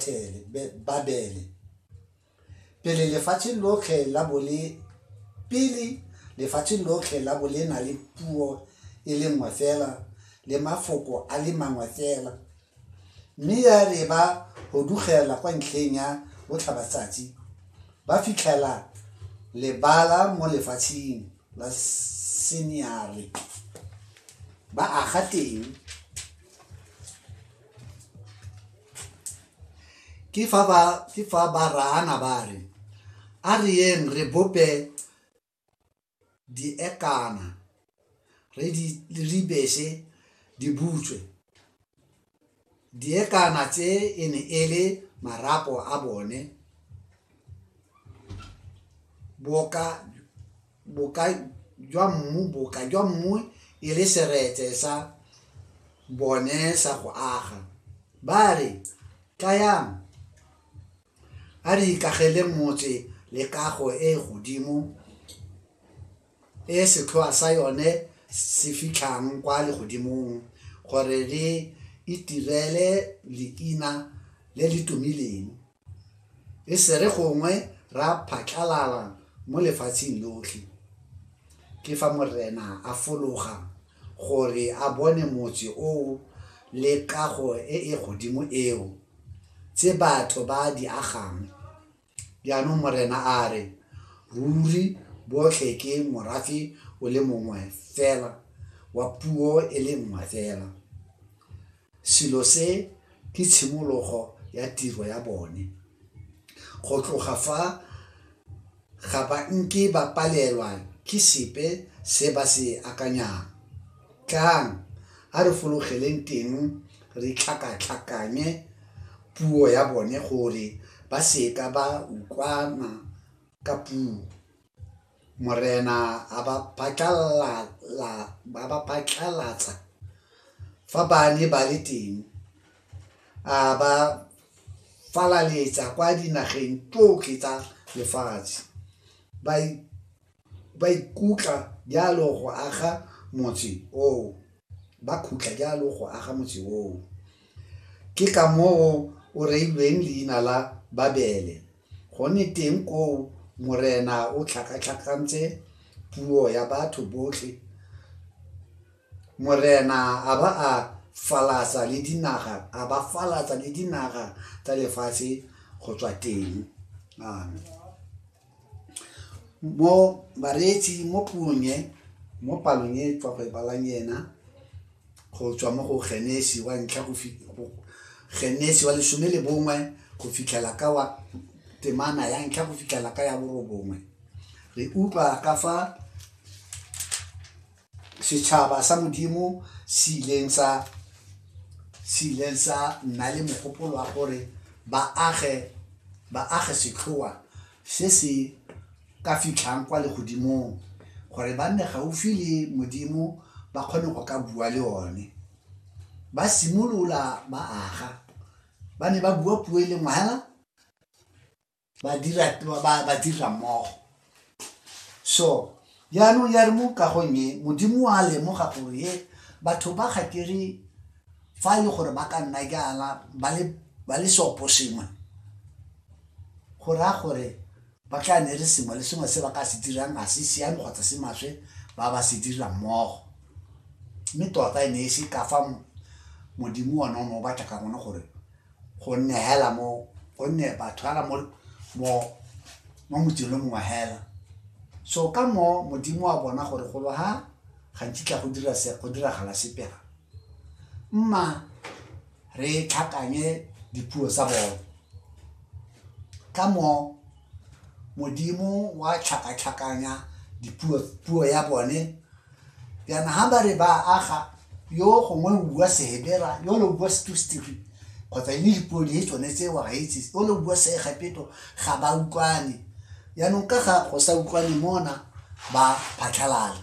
Bethele, Be- Babele. Pele lefatsheng lotlhe la bo le pele lefatsheng lotlhe la bo le na le puo e le nngwe fela le mafoko a le mangwe fela mme ya re ba hudugela kwa ntlheng ya botlhabatsatsi ba fitlhela lebala mo lefatsheng la seniare ba aga teng ke fa ba ke fa ba raana ba re a re yeng re bope diekana re di re bese di butswe diekana tse e ne e le marapo a bone boka boka jwa mmu boka jwa mmu e le seretse sa bone sa go aga ba re tlayang a re ikagele motse le kago e e godimo e setlhoa sa yone se fitlhang kwa legodimong gore le itirele leina le le tumileng e sere gongwe ra phatlalala mo lefatsheng lotlhe ke fa morena a fologa gore a bone motse oo le kago e e godimo eo tse batho ba di agang jaanong morena a re ruri botlhe ke morafe o le mongwe fela wa puo e le nngwe fela Selo se ke tshimologo ya tiro ya bone. Go tloga fa ga ba nke ba palelwa ke sepe se ba se akanyang. Tlang a re fologeleng teng re tlhakatlhakanye puo ya bone gore ba seka ba utlwana ka puo. Morena a ba phatlalatsa fa ba ne ba le teng, a ba falaletsa kwa dinageng tsotlhe tsa lefatshe. Ba ikutla jalo go aga motse oo, ba khutla jalo go aga motse oo. Ke ka moo o reilweng leina la Babele. Gone teng koo Morena o tlhakatlhakantse puo ya batho botlhe, Morena a ba a falatsa le dinaga, a ba falatsa le dinaga tsa lefatshe go tswa teng. Amen. Mo bareetsi mo puong e, mo palong e tswa go e balang ena, go tswa mo go Genesi wa ntlha go Genesi wa lesome le bongwe go fitlhela ka wa temana ya ntlha go fitlhela ka ya borobongwe re utlwa ka fa setšhaba sa modimo se ileng sa se ileng sa nna le mogopolo wa gore ba age ba age setlhoa se se ka fitlhang kwa legodimong gore ba nne gaufi le Modimo ba kgone go ka bua le one. Ba simolola ba aga, ba ne ba bua puo e le nngwe hela ba dira ba dira mmogo. So jaanong ya re mo kagong e Modimo a lemoga gore he batho ba ga ke re fa e le gore ba ka nna jaana ba le seoposengwe go raya gore Ba tla ne re sengwe le sengwe se ba ka se dirang ga se siame kgotsa se maswe ba ba se dira mmogo. Mme tota e ne e se ka fa Modimo one o ne o batla ka gone gore go nne hela mo go nne batho hela mo mo mo motseng le mongwe hela. So ka moo Modimo wa bona gore golo ha ga nkitla go dira se go diragala sepe ga mma re tlhakanye dipuo tsa bone ka moo modimo wa tlhakatlhakanya dipuo puo ya bone yana ha ba re ba aga yo gongwe o bua sehebera yo le bua setustiri kgotsa e le dipuo di tsone tse wa gaitse o le bua seegepeto ga ba utlwane yaanong ka ga go sa utlwane mona ba phatlhalala